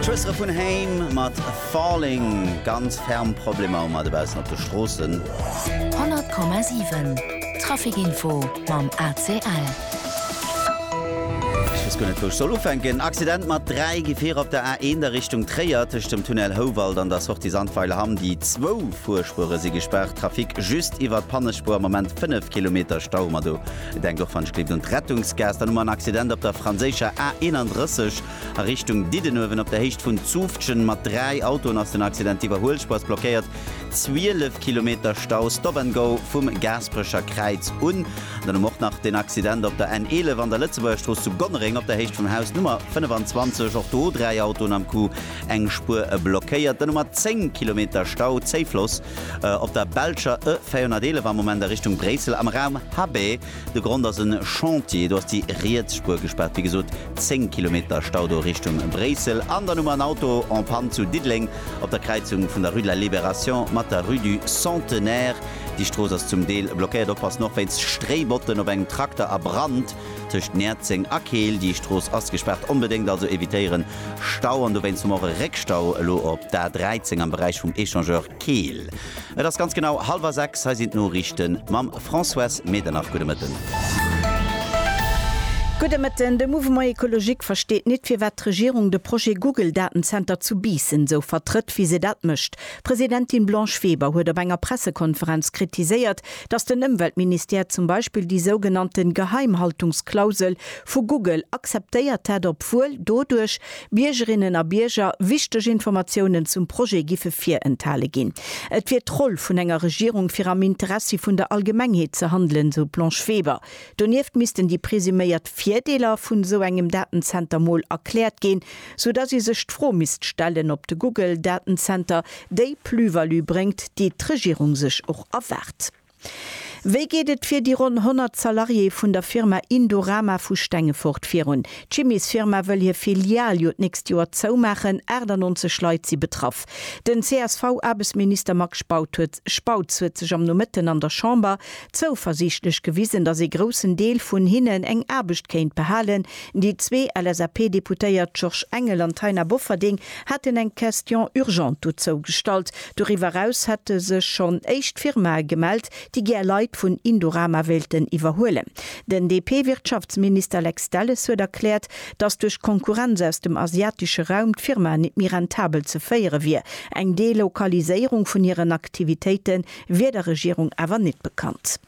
D'Schwëstere vun Haim mat Falling. Ganz ferm Problemer um a dobaussen op de Stroossen. 100,7 Traficinfo mam ACL. Ech weess guer net wou ech soll ufänken. Accident mat 3 Gefierer op der A1 a Richtung Tréier tëscht dem Tunnel Houwald an der Sortie Sandweiler Hamm. Déi zwou Fuerspuere si gespaart. Trafic just iwwert d'Pannespuer am Moment 5 Kilometer Stau mat do. Denkt och wann ech gleeft un d'Rettungsgaas, dann hu mer en Accident op der franséischer A 31 a Richtung Diddenuewen. Op der Héicht vun Zufftgen mat 3 Autoen ass den Accident. D'Iwwerhuelspaass blockéiert 12 Kilometer Stau, Stop and Go vum Gaasperecher Kräiz un. Dann hu mer och nach den Accident op der N 11 an der Lëtzebuergerstrooss zu Gonnereng op der Héicht vum Haus Nummer 25. Och do 3 Autoen am Coup, eng Spuer blockéiert. Dann hu mer 10 Kilometer Stau, Zéifloss Op der belscher E 411 am Moment a Richtung Bréissel am Raum HB. De Grond ass e Chantier. Do ass déi riets Spuer gespaart. Wéi gesot 10 Kilometer Stau do Richtung Bréissel. An dann hu mer en Auto en panne zu Diddeleng op der Kräizung vun der Rue de la Libération mat der Rue du Centenaire. Déi Strooss ass zum Deel blockéiert. Oppassen och wéinst Stréibotten op engem Trakter a Brand tëscht Näerzeng a Keel. Déi Strooss ass gespaart. Onbedéngt also evitéieren Stau an dowéinst och e Réckstau elo op der A13 am Beräich vum Echangeur Keel. Et ass ganz genau hallwer sechs, hei sinn d'Noriichte mam Françoise Medernach. Gudde Mëtten. Gudde Mëtten. De Mouvement Ecologique versteet nit, firwat d'Regierung de Projet Google-Datenzenter zu Biissen esou vertrëtt, wéi se dat mécht. D'Presidentin Blanche Weber huet op enger Pressekonferenz kritiséiert, dass den Ëmweltministère zum Beispill déi sougenannten Geheimhaltungsklausel vu Google akzeptéiert hätt, obwuel doduerch Biergerinnen a Bierger wichteg Informatiounen zum Projet giffe virenthale ginn. Et wier d'Roll vun enger Regierung fir am Interessi vun der Allgemengheet ze handelen, esou d'Blanche Weber. Donieft missten déi presuméiert Virdeeler vun esou engem Datenzenter mol erkläert ginn. sou dass ee sech d'Fro misst stellen, ob de Google Datenzenter déi Plus-value bréngt, déi d'Regierung sech och erwaart. Wéi geet et fir déi ronn 100 Salariéë vun der Firma Indorama vu Stengefort virun? D'Chimiesfirma wëll hir Filial jo d'nächst Joer zoumaachen, 98 Leit si betraff. Den CSV-Aarbechtsminister Max Spautz huet sech am Nomëtten an der Chamber zouversiichtlech gewisen, dass ee groussen Deel vun hinnen eng Aarbecht kéint behalen, Déi zwee LSAP-Deputéiert Georges Engel an Taina Bofferding haten eng Question urgente dozou gestallt. Doriwwer eraus hätte sech schonn éischt Firmae gemellt, déi gär Leit vun Indorama wéilten iwwerhuelen. Den DP-Wirtschaftsminister Lex Delles huet erkläert, datt duerch d'Konkurrenz aus dem asiatesche Raum d'Firma net méi rentabel ze féiere wier. Eng Delokaliséierung vun hiren Aktivitéite wier der Regierung awer net bekannt.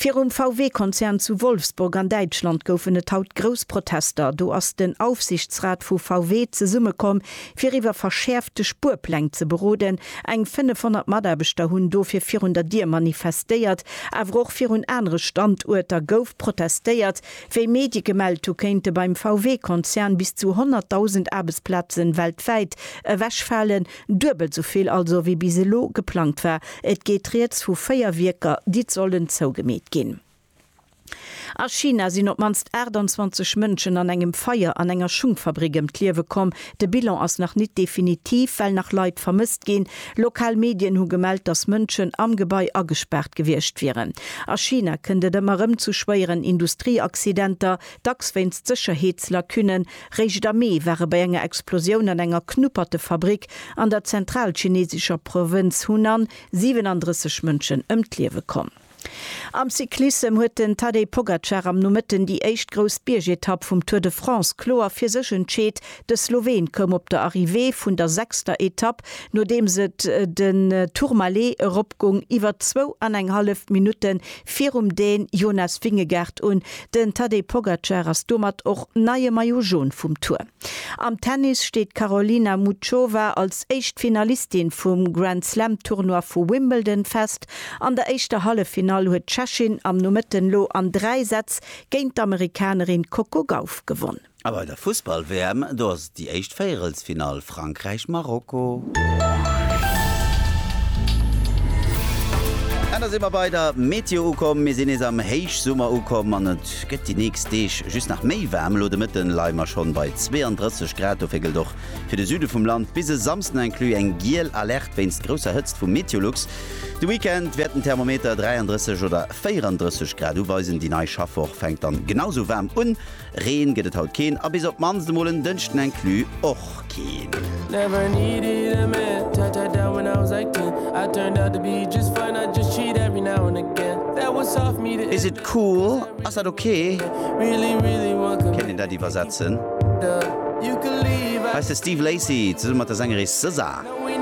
Virum VW-Konzern zu Wolfsburg an Däitschland goufen et haut grouss Protester. Do ass den Aufsichtsrat vu VW zesummekomm, fir iwwer verschäerfte Spuerpläng ze beroden. Eng 500 Mataarbechter hunn dofir virun der Dier manifestéiert. Awer och virun anere Standuerter gouf protestéiert. Wéi Medie gemellt hu kéinte beim VW-Konzern bis zu 100.000 Aarbechtsplaze weltwäit ewechfalen. Duebelt sou vill also wéi bis elo geplangt war. Et geet rieds vu véier Wierker, déi d'Sollen zougemeet ginn. A China sinn op d'mannst 28 Mënschen an engem Feier an enger Schungfabrik ëm d'Liewe komm. De Bilan ass nach nit definitiv, well nach Leit vermësst ginn. Lokal Medien hu gemellt, datt Mënschen am Gebai agespaart gewiescht wieren. A China kënnt et ëmmer erëm zu schwéieren Industrieaccidenter, dacks wéinst Sécherheetslacunnen Réischt am Mee ware bei enger Explosioun an enger Knuppertefabrik an der zentralchinesescher Provënz Hunan 37 Mënschen ëm d'Liewe komm. Am Cyclissem huet den Tadej Pogacar am Nomëtten déi éischt grouss Biergetapp vum Tour de France kloer fir sech entscheet. De Sloween koum op der Arrivée vun der sechster Etapp, nodeems et den Tourmalet eropgung, iwwer zwou an eng hallef Minutte virum den Jonas Vingegaard un, den Tadej Pogacar ass domat och neie Maillot Jaune vum Tour. Am Tennis steet d'Karolina Muchova als éischt Finalistin vum Grand Slam Tournoi vu Wimbledon fest. An der éischter Halleffinall huet d'Tschechin am Nomëtten lo an 3 Sätz géint d'Amerikanerin Coco Gauff gewonn. A bei der Fussball-WM, do ass et déi éischt Véierelsfinall, Frankräich-Marokko. An da si mer bei der Meteo ukomm. Mir sinn nees am Héichsummer ukomm an et gëtt déi nächst Deeg just nach méi waarm. Elo de Mëtten leie mer schonn bei 32 Grad. Dofir gëllt och fir de Süde vum Land bis e Samsden inclus eng giel Alerte wéinst grousser Hëtzt vu Meteolux. De Weekend wäert den Thermometer 33 oder 34 Grad uweisen. Déi nei Schaffwoch fänkt dann genau esou waarm un Reen gëtt et haut keen a bis op d'mannst emol en Dënschden inclus och keen. Is it cool? Ass dat ok? Kéint een dat iwwersetzen? Hei ass de Steve Lacy zesumme mat der Sängeris SZA.